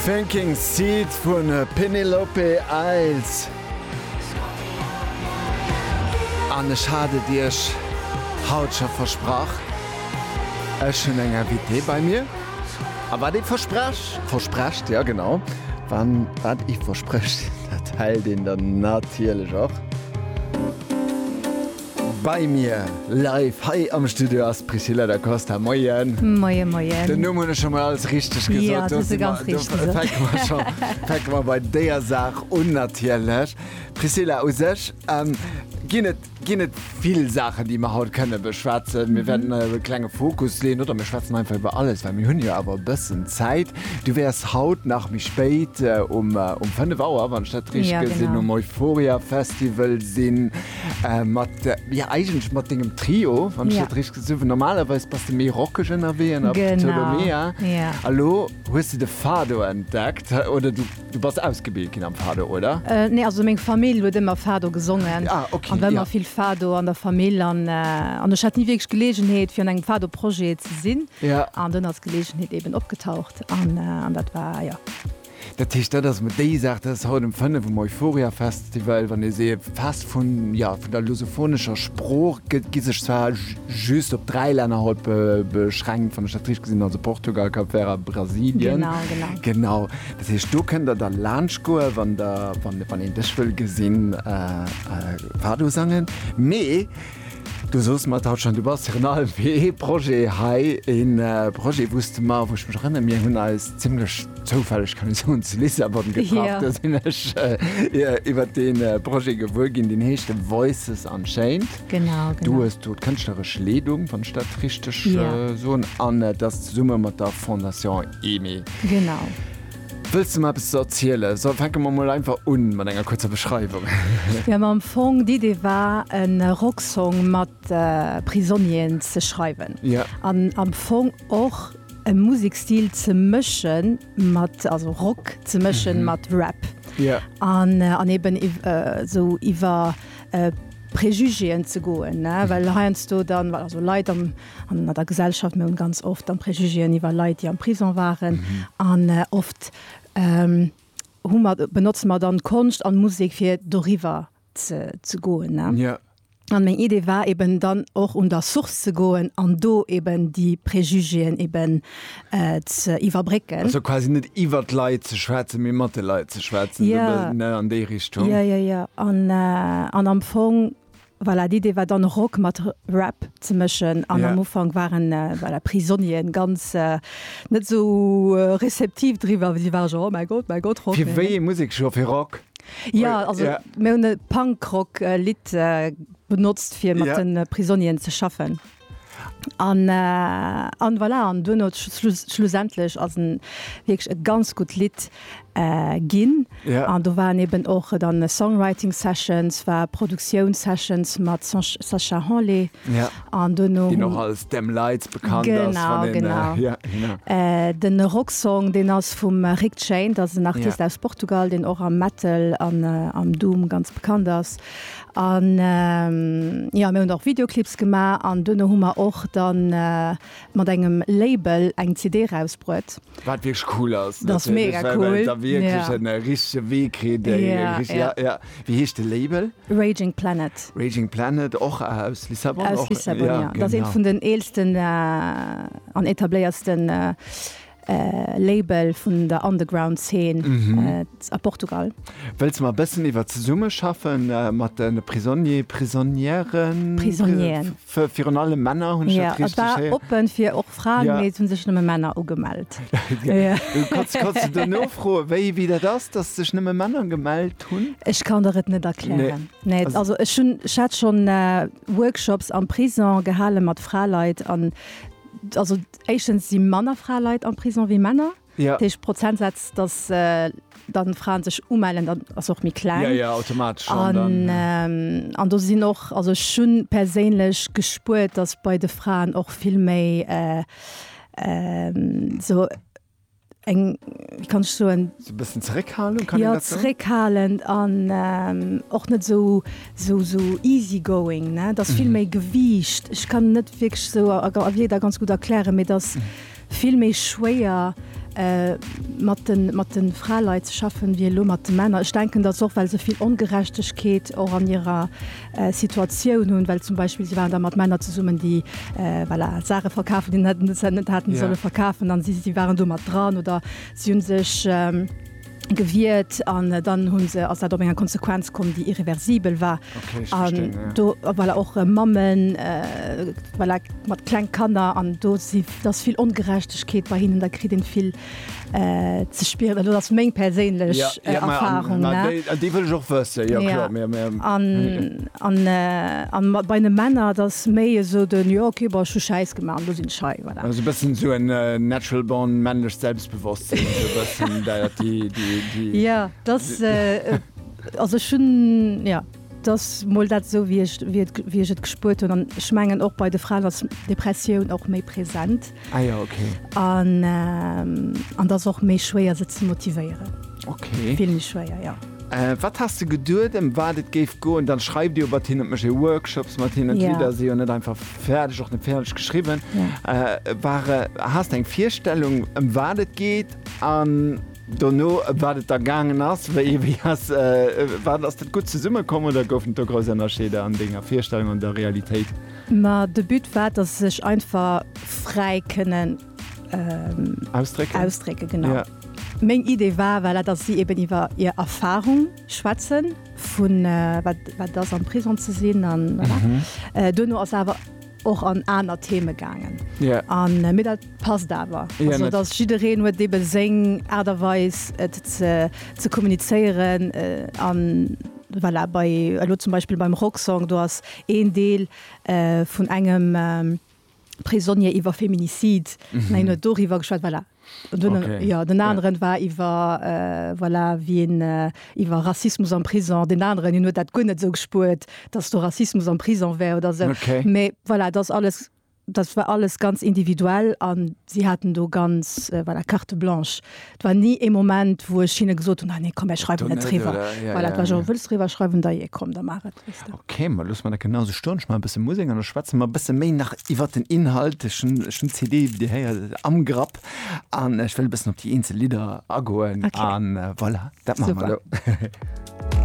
Sinking Seed vun Penelope Eils. An ech hat et iech haut scho versprach, ech hunn eng Invitée bei mir. A wat ee versprech, versprecht, jo genau, wann wat ee versprecht, dat hält een dann natierlech och. Bei mir live hei am Studio ass d'Priscilla Da Costa. Moien. Moien, moien. Den Numm hunn ech scho mol alles richteg gesot? Jo, hues e ganz richteg gesot. Do fänke mer scho, fänke mer bei deeër Saach un natierlech. Priscilla, u sech ginn et, ginn et vill Saachen, déi mer haut kënne beschwätzen. Mir wäerten e klenge Fokus leeën oder mir schwätzen einfach iwwer alles, well mir hunn jo awer e bëssen Zäit. Du wäers haut nach méi spéit, um fënnef Auer, wann ech dat richteg gesinn hunn, um Euphoria Festival sinn. Mat ja eigentlech mat dengem Trio wann ech dat richteg gesinn hunn. Normalerweis bass de méi rockeg ënnerwee an der Ptolomea. A lo hues de de Fado entdeckt oder du bass ausgebilt ginn am Fado, oder? Nee, also meng Famill huet ëmmer Fado gesongen an et war ëmmer vill Fado an der Famill. An ech hat ni wierklech Geleegenheet fir an engem Fado-Projet ze sinn an dunn ass d'Geleegenheet eeben opgetaucht an dat war, jo. Dat heescht, dat ass emmer déi Saach, dat ass haut ëm 5 um Euphoria Festival, wann ee se fest vun, jo, vun der lusophonescher Sprooch gëtt, gi sech zwar just op dräi Länner haut beschränkt, wann ech dat richteg gesinn hunn, also Portugal, Kap Vert a Brasilien. Genau, genau. Genau. Dat heescht, do kënnt der da laanscht goen, wann der, wann een dech wëll gesinn fado sangen. Mee. Du soos mer et haut schonn, du bass virun allem fir ee Projet hei, e Projet, wou s de mer, wou ech mech erënnere, mir hunn eis zimlech zoufälleg, kann ee soen, zu Lissabon getraff, do sinn ech iwwer dee Projet gewuer ginn, deen heescht Voices Unchained. Genau, genau. Du hues do d'kënschtleresch Leedung, wann ech dat richteg soen, an et ass zesumme mat der Fondation Aimée. Genau. Wëlls de mer eppes ze erzielen? Soll fänke mer mol einfach un mat enger kuerzer Beschreiwung. Jo, ma am Fong d'Idee war en Rocksong mat Prisonnieren ze schreiwen. Jo. An am Fong och e Musekstil ze mëschen mat, also Rock ze mëschen mat Rap. Jo. An an eben esou iwwer Préjugéen ze goen ne, well heiansdo dann, also Leit am. An der Gesellschaft, mir hunn ganz oft dann Préjugéen iwwer Leit, déi am Prison waren. An oft hu mer, benotzen mer dann Konscht an Musek fir doriwwer ze ze goen, ne? Jo. An meng Idee war eben dann och un der Source ze goen an do eben déi Préjugéen eben ze iwwerbrécken. Also quasi net iwwer d'Leit ze schwätzen, mee mat de Leit ze schwätzen, esou e bëssen, ne, an déi Richtung. Jo, jo, jo, jo. An, an am Fong Voilà, d'Idee war dann Rock mat Rap ze mëschen an am Ufank waren, voilà, Prisonnieren ganz net esou receptiv driwwer, well si ware genre, oh mäi Gott, mäi Gott, Rock, Fir wéi ee Musek scho fir Rock? Jo, also mir hunn e Punk-Rock-Lidd benotzt fir mat de Prisonnieren ze schaffen. An an voilà, an duerno schlussendlech ass en wierklech e ganz gutt Lidd ginn. An do waren eben och dann Songwriting Sessions, war Produktioun Sessions mat Sacha Henle an duerno hunn. Deen och als Damn Lights bekannt ass. Genau, genau. Den Rocksong, deen ass vum Rick Chain, dat ass en Artist aus Portugal, deen och am Metal an am Doom ganz bekannt ass. An jo, mir hunn och Videoclips gemaach an duerno hu mer och dann mat engem Label eng CD rausbruet. Wat wierklech cool ass. Dat ass mega cool. Well et da wierklech en richtege Wee kritt. Ja, ja. Wéi heescht de Label? Raging Planet. Raging Planet, och aus Lissabon? Aus Lissabon, jo. Dat ass eent vun den eelsten an etabléiertsten Label vun der Underground Zeen a Portugal. Wëlls mer e bëssen iwwer d'Zesummeschaffen mat de Prisonnier, Prisonnieren? Prisonnieren. Virun allem Männer, hunn ech dat richteg héieren? Jo, et war oppen fir och Fraen, mee et hu sech nëmme Männer ugemellt. Kanns de do nofroen, wéi dat ass, datt sech nëmme Männer gemellt hunn? Ech kann der et net erklären. Nee, also ech hunn, ech hat schonn Workshops am Prisong gehale mat Fraleit an also. Éischtens si manner Fraleit am Prison wéi Männer. Ja. Dat heescht, Prozentsätz, dass dann Fraen sech umellen, dat ass och méi kleng. Ja, ja, automatesch schonn dann. An, an do sinn och, also ech hu perséinlech gespuert, dass bei de Fraen och vill méi esou. eng wie kann ech so en so bëssen zeréckhalen kann ja zeréckhalen an ähm, och net so so so easy going ne dat vill mhm. méi gewiicht ich kann net wirklich so a, a, a wie da ganz gut erklären mir das mhm. vill méi schwéier Äh, mat den, mat den Fraleit ze schaffen wie lo mat de Männer. Ech denken dat soch well se vill Ongerechtegkeet och an ihrer Situatioun hunn, well zum Beispill si waren da mat Männer zesummen, déi voilà Saache verkafen, déi net net haten solle verkafen an si si waren do mat dran oder si hunn sech gewiert an dann hunn se ass dat op enger Konsequenz komm, déi irreversibel war an do voilà och Mammen voilà mat kleng Kanner an do si dass vill Ongerechtegkeet bei hinnen, da kritt een vill. ze spieren, elo ass meng perséinlech Erfahrung déi wëll ech och wësse an bei de Männer datt méi esou den jo okay bon ech hu Schäiss gemaach an elo sinn ech hei voilà. Also e bëssen esou en natural born männlecht Selbstbewosstsinn esou e bëssen dat déi déi. Jo datt also ech hunn jo. Et ass mol dat esou wéi ech wéi ech et gespuert hunn an ech mengen och bei de Fraen ass Depressioun och méi present. Ah jo ok. An an et ass och méi schwéier se ze motivéieren. Ok. Vill méi schwéier jo. Wat has de geduet em wat et géif goen? Dann schreift Dir jo mat hinnen, et mécht ee Workshops mat hinnen, d'Lidder si jo net einfach fäerdeg, och net fäerdeg geschriwwen. War, has de eng Virstellung em wat et geet an? Dono wat et da gaangen ass, wéi ee wéi ass, wat ass dat gutt zesumme komm oder goufen et do grouss Ënnerscheeder an denger Virstellung an der Realitéit? Ma de But war, dass se sech einfach fräi kënnen. Ausdrécken. Ausdrécken, genau. Ja. Meng Idee war, voilà, dass si eben iwwer hir Erfahrung schwätzen, vu wat, wat et ass am Prisong ze sinn an voilà. Dono ass awer. och an aner Theme gaangen. Yeah. Mee dat passt awer. Yeah, also, dass jiddereen huet ebe seng Aart a Weis et ze, ze kommunizéieren an voilà, bei elo zum Beispill beim Rocksong, do ass een Deel vun engem Prisonnier iwwer Feminicide, mä hien huet doriwwer geschwat, voilà. Jo, den aneren war iwwer, voilà, wien iwwer Rassismus am Prison, deen aneren, hien huet dat guer net esou gespuert, datt do Rassismus am Prison wär oder esou. Mee voilà, et ass alles, dat war alles ganz individuell an si haten do ganz, voilà, Carte blanche. Et war ni ee Moment, wou ech hinne gesot hunn, Ah nee, komm, mir schreiwen net driwwer. Voilà, et war just, Wëlls driwwer schreiwen? Da jee, komm, da maach et. Okay, ma loosse mer dat genau esou stoen. Ech maachen e bësse Musek an da schwätze mer e bësse méi nach iwwert den Inhalt. Ech hunn den CD, wéi Dir héiert, am Grapp an ech wëll e bëssen op déi eenzel Lidder agoen. Voilà, dat maache mer elo.